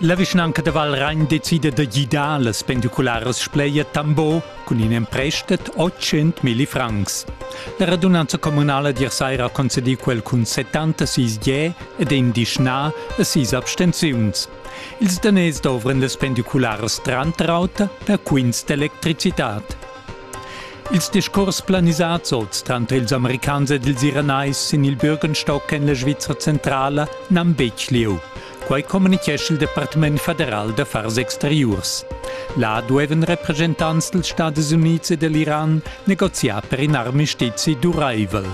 La vischnanca da Valragn decida da gidar las pendicularas Spleia Tambo cun in emprestet 800 milli francs. La radunanza communala di saira concedì quel cun 76 je ed in dischnà a sis abstenziuns. Ils daners dovran las pendicularas Trantrauta per quints d'electricitad. Ils discurs planisads oz tranter ils Americans ed ils Iranais sin il Bürgenstock en la Svizra centrala n'han betg lieu. Quai communitgescha il Departament federal d'affars exteriurs. Là duevan represchentants dals Stadis Unids e dell'Iran negoziar per in armistizi duraivel.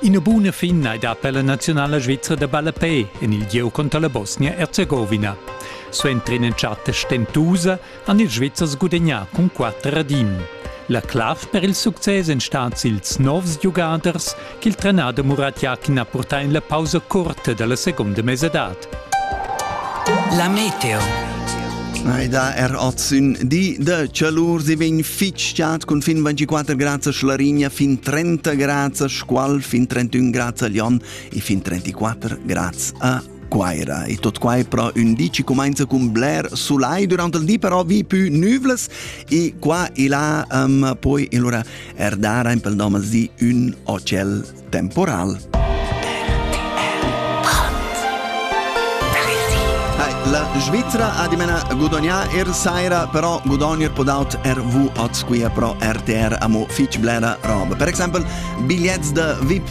Ina buna fin hai dà per la nazionala svizra da ballapé en il gieu conter la Bosnia-Erzegowina. Suenter ina chatta stentusa han ils Svizzers gudegnà cun quatter ad in. La clav per il success èn stads ils novs giugaders ch'il trenader Murat Yakin ha purtà en la pausa curta da la segunda mesadad. La Meteo Ei da er oz ün di de chalur, si vegn fitschat cun fin 24 grad a Schlarigna, fin 30 grad a Scual, fin 31 grad a Lyon e fin 34 grad a Guaira. E tot quai pro ün di ci comincia cun bler sulai durante il di, però vi più nüvles e qua e là um, poi allora erdara in pel di un hotel temporal. La Svizzera ha di mena gudognà er saira, però gudognir podaut RV oz qui pro RTR amo fitch blera roba. Per exemple, bigliets de VIP